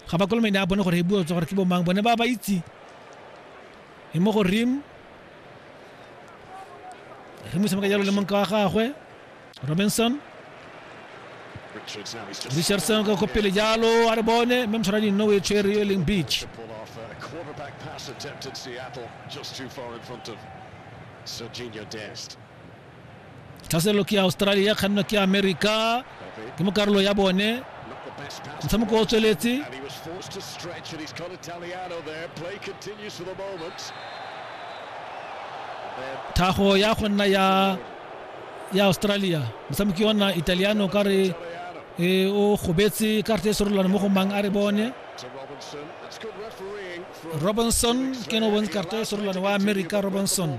Ga ba kolomene a bone gore e bua tswa gore ke bo mang bone ba ba itse e mo go rim re mo semeka jalo le monka wa gagwe robinson richardson ka ko pele jalo a re bone mme motshwara dinno o e tshwere yo e leng beach Serginho Dest. tlhaselo ke ya australia kganno ke ya america ke mo karolo ya bone motshameko o tsweletse thago ya go nna ya ya australia motshameki ona italiano ka re e o gobetse karte e serolwane mo go mang a re bone robinson ke no bontse karte e serolwane wa america robinson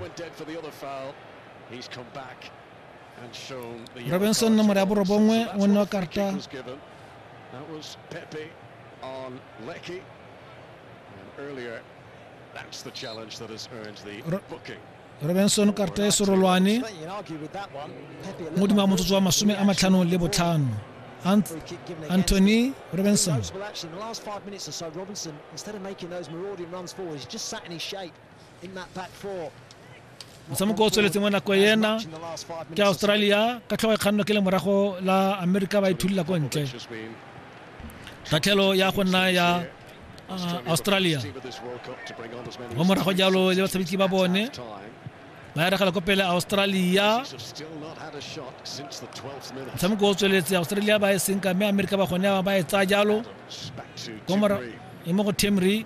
robinson nomoro ya borobongwe o nne wa karta robinson karta e serolwane modimo wa motsotso wa masome a matlhano le botlhano Ant Anthony Robinson. Robinson, instead of making those marauding runs forward, he's just sat in his shape. motshameko o tsweletseng mo nako ena ke australia ka tlhogo e kganno ke le morago la america ba ithulila ko ntle tlhatlhelo ya go nna ya uh, australia mo morago jalo le batshameki ba bone ba eregela ko pele australia motshameko o tsweletse australia ba e senka mme america ba gone ba e tsaya jalo e mo go temry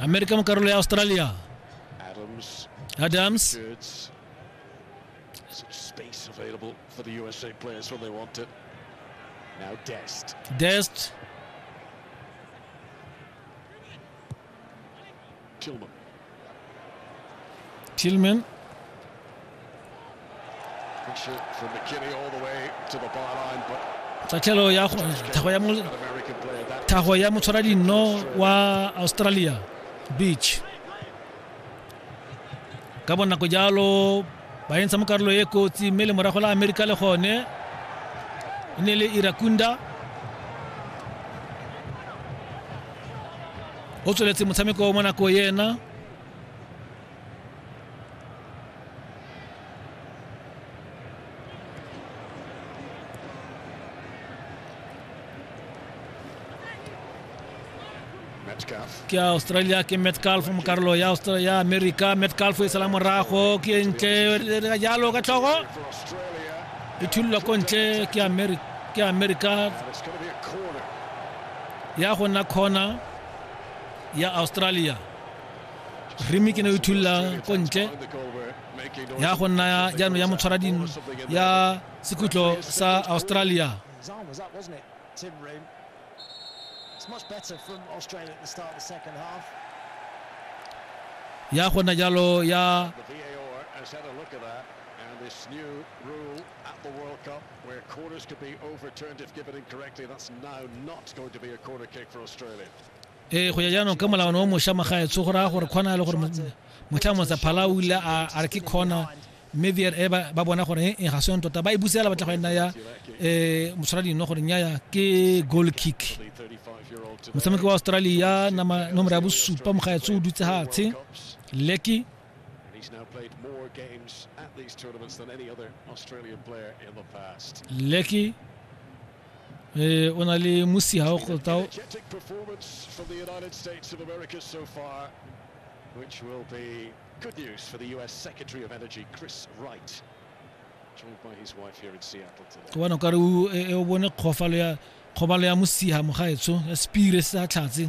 amerika mu karolo ya australia Adams, adams Kurtz. Some space available for the USA players when they want it. Now Dest. dest Tillman. Tillman. tatlhelo ya thago ya motshwara dino wa australia beach ka bonako jalo ba entsha mo karolo e kotsi mme le morago la amerika le gone e ne le irakunda o tsweletse motshameko mo nako ena ke australia ke metcalf mo karolo ya australia america metcalf e sala morago ke ntle ka jalo ka tlhogo e thulwa ko ntle ke america ya go nna corner ya australia rimi ke ne o ithulula ko ntle ya go nna jaanong ya motshwara dino ya sekhutlo sa australia ya go nna jalo ya Where corners could be overturned if given incorrectly, that's now not going to be a corner kick for Australia. ee go ya jaanong ka molawana o mošwa magaetsho go raya gore kgona le gore motlha motsa phala o ile a re ke kgona mme vr e ba bona gore e ga seng tota ba e busela batla go e nna ya um motshwara dino gore nyaya ke goal kick motshameki wa australia nomoro ya bosupa mogaetsho o dutse gatshe leki Lecky eh o na le musi ha o kgotao which will be good news for the US Secretary of Energy Chris Wright joined by his wife here in Seattle today ke bona ka re o bone kgofalo ya kgobalo ya mosiha mogaetsho ya spire sa tlhatse